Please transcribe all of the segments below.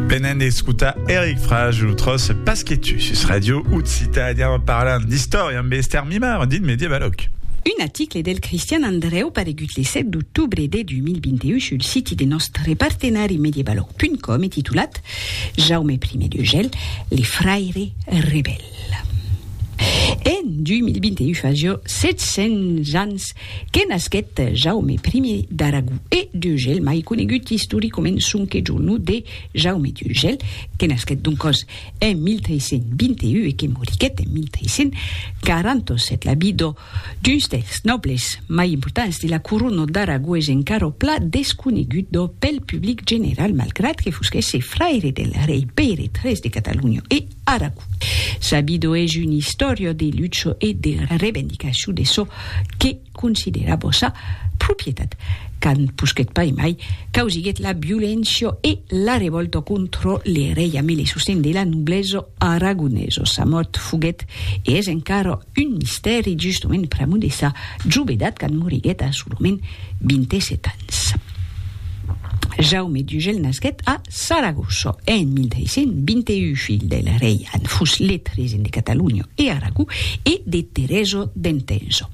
Venent d'escutar Eric Frage, lo tròç Pas que tu sus Radio Occitània en parlant d'istòria amb Esther Mimar, dit Medievaloc. Un aticle del Cristian Andrèu paregut le 7 d'octobre de 2021 sul siti de nòstre partenari medievaloc.com e titulat Jaume I d'Urgell, le fraire rebèl. En 2021 fa jo 700 ans que nasquèt Jaume Ier d'Aragó e d'Urgèl, mai conegut istoricament sonque jo nom de Jaume d'Urgèl, que nasquèt doncòs en 1321 e que moriguèt en 1347. La vidò d'uns dels nòbles mai importants de la corona d'Aragó es encara pla desconeguda pel public general malgrat que fosquèsse fraire del rei Pèire iii de Catalonha e, Aragon. Sabido es un istòrio de lucho e de revendicacion de çò que considera bossa propietat, quand posquèt pas e mai causiguèt la violéncia e la revòlta contra le rei amé le sosten de la noblesa aragonesa. Sa mòrt foguèt e es encara un mistèri justament pr'amor de sa jovedat quand moriguèt a solament 27 ans. Jaume d'Ugel nasquèt a. Saragossa en 1621, filh del rei an fus lèt regent de Catalonha e Aragó e de Teresa d'Entença.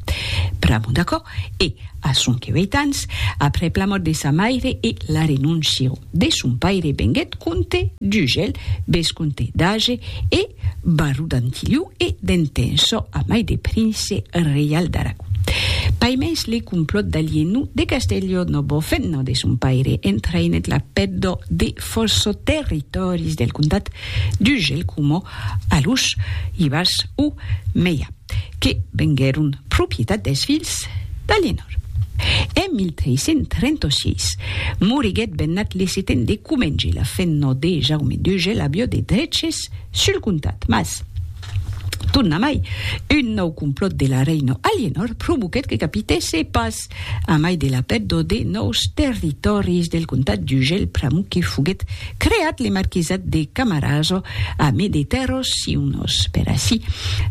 Pr'amor d'aquò, e a sonque ueit ans, aprèp la mòrt de sa maire e la renóncia de son paire venguèt comte d'Ugèl, vescomte d'Age e Baró d'Antilhau e d'Entençò amai de prince reial d'Aragón. Paimens le complòt d'Alienú de Castelló no bo fent-ne de son paire, entraïnèt la pèddo de fòrço territòris del comtat d'Ugel coma Alús, Ibars o Meià. que venguèron propietat dels filhs d'Aliénor. En 1336, moriguèt Bernat le Seten de Comenge, la fenna de Jaume Duge, l'avió de dreches sul comtat. Mas, tornamai, un nòu complòt de la reina Aliénor provoquèt que capitèsse pas A mai de la pèrdua de nòus territòris del comtat d'Urgell pr'amor que foguèt creat le marquisat de Camarasa a mai de tèrras siunas per ací,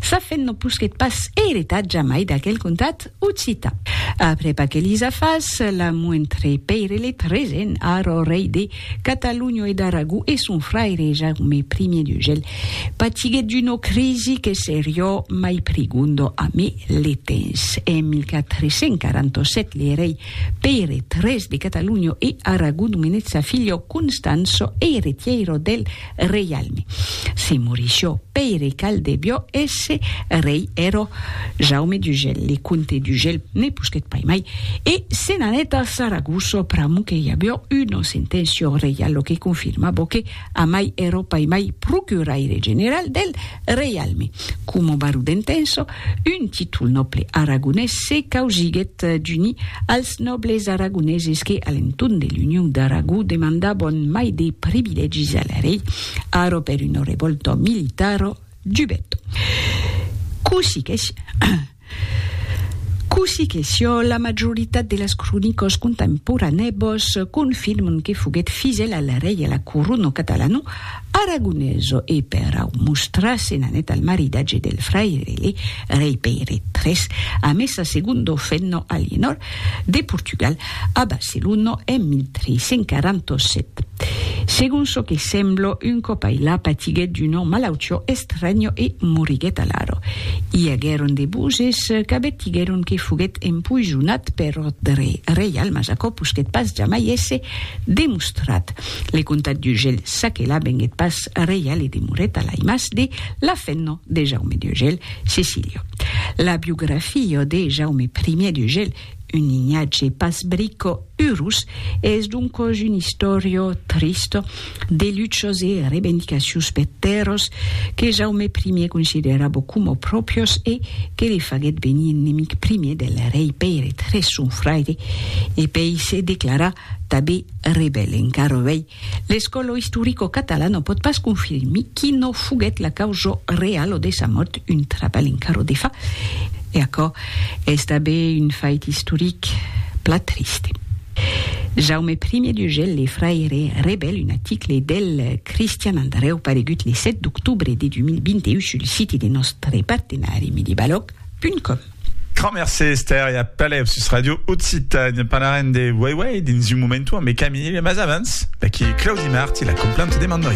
sa fin non posquèt pas eretat jamai d'aquel comtat occitan. Aprèp aquelis afars, la Moentré Pèirelèt regent, ara rei de Catalunho e d'Aragó e son fraire Jaume I d'Ugèl patiguèt d'una crisi que serió mai prigonda a me le temps. En 1447 le rei Pèire iii de Catalunho e Aragó nomenèt sa filha Constança eiretièira del Reialme. Se morishió Pèire Cal debió èsse rei ero Jaume d'Ugel, le comte d'Ugel ne posquèt pas mai e se n'anèt a Saragosso pr'amor que i abió una senténcia reial lo que confirmabó que amai ero pas mai procuraire general del reialme, coma baró d'Entenço Un títol nòble aragonés se causiguèt d'unir als nòbles aragoneses que, a l'entorn de l'Union d'Aragó, demandavan mai de privilègis al rei, arò per una revòlta militara, dubèt. Cossí que Cossí que siá, la majoritat de las cronicas contemporanèbas confirman que foguèt fidèl al rei e a la corona catalana, Aragoneso e per au mostrar se n'anèt al maridatge del fraire le rei Pèire tres a messa segundo Fenno Alienor de Portugal a Barcelono en 1347. Segon çò que semblo, un còp ailà patiguèt d'una malautió estranya e moriguèt alara. I aguèron de boses qu'abèt diguèron que foguèt empoisonat per òrdre reial mas aquò posquèt pas jamai èsser demostrat. Le comtat d'Ugèl s'aquela venguèt pas reial e demorèt a l'aimaç de l'afenno de Jaume d'Ugèl, Cecilio. La biografia de Jaume I d'Ugèl, un linhatge pas brico urós, es doncòs una istòria trista de luchas e revendicacions per tèrras que Jaume I considerava coma pròprias e que le faguèt venir enemic primièr del rei Pèire iii, son fraire, e pei se declarar tanben Rebèl encara uèi, l'escòlo istoricocatalà non pòt pas confirmir qui no foguèt la causa realo de sa mòrt, un trabèl encara de fa, e aquò es tanben un fait istoric plan triste. Jaume Primier d'Urgel, le fraire Rebèl, un aticle del Cristian Andrèu paregut le 7 d'octobre de 2021 sul siti de nòstre partenari medibalòg punt com. Grand mercé Esther e apèl eo sus Radio Occitània. Parlarem de Wei Wei dins un momentu ambe Camille, mas avans, d'aquí Claudi Marti, la complan te demandoi.